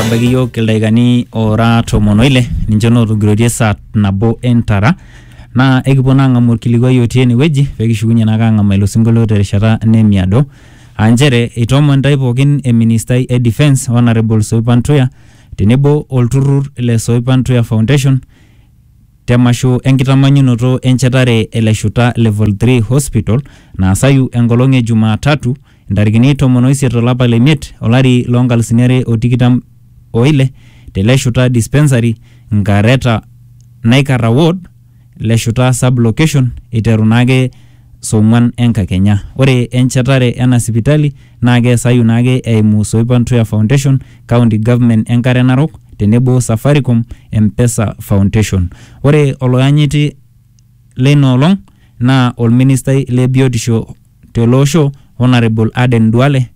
ebaiki iyiook ildaikani oora tomon oile ninche nootogiroitie saa nabo entara naa ekipuo naa ang'amu orkilikuai otii enewueji pekishukunye naake ang'amaa ilo sinkolio terishata nemiado aa nchere eitoomon intae pookin eministai e defence honourable Soipan Tuya tenebo olturrur le Soipan Tuya Foundation temasho enkitamanyunoto enchetare ele shuta level 3 hospital naasayu enkolong e jumaa tatu intarikini tomon oisiet to lapa le miet olari loo nkalusuni are o tikitam o ile te Leshuta Dispensary, Nkareta Naikarra Ward, Leshuta Sub Location eiteru naake song'uan enkakenya. Ore enchetare ena sipitali naa keasayu naake eimu Soipan Tuya Foundation, County Government Enkare Narok tenebo Safaricom Mpesa Foundation. Ore oloyanyiti leina olong naa olministai le biotisho, tele osho Honourable Aden Duale,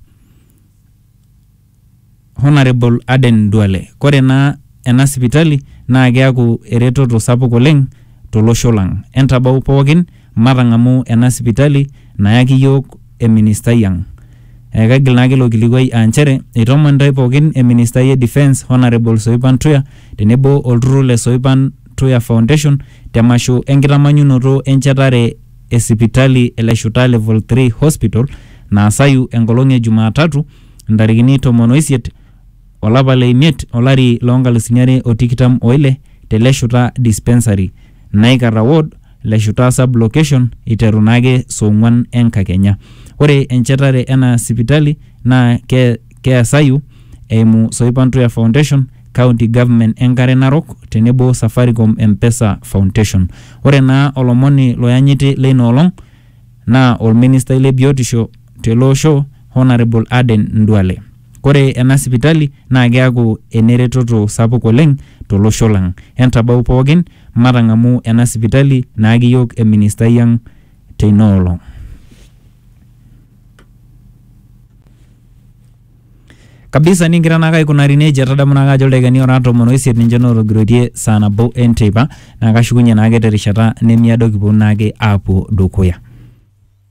Honourable Aden Duale. Kore naa ena sipitali naa keaku eretoto sapuk oleng tolosho lang. Entabau pookin matang'amu ena sipitali nayaki yook eministai ang. Ekaigil naake ilo kilikuai aa nchere eitomon intae pookin eministai e Defence Honourable Soipan Tuya tenebo olturrur le Soipan Tuya Foundation te masho enkitamanyunoto enchetare e sipitali e Leshuta Level Three Hospital naasayu enkolong e Jumaatatu intarikini tomon o isiet o lapa le imiet o lari loo nkalusuni are o tikitam o ile te Leshuta Dispensary, Naikarra Ward, Leshuta Sub Location eiteru naake soong'uan enkakenya. Ore enchetare ena sipitali naa ke. keasayu eimu Soipantuya Foundation, County Government Enkare Narok tenebo Safaricom Mpesa Foundation. Ore naa olomoni loyanyiti leina olong naa olministai le biotisho tele osho Honarable Aden Nduale. Kore ena sipitali naa keaku eneretoto sapuk oleng tolosho lang. Entabau pookin matang'amu ena sipitali naaki yook eministai ang teina olong. kabisa ningira naake aikunari nejia tadamu naake ajo ildaikani ora tomon oisiet ninche nootogiroitie saa nabo enteipa naa kashukunye naake terishata nemiado kiponu naake aapuo dukuya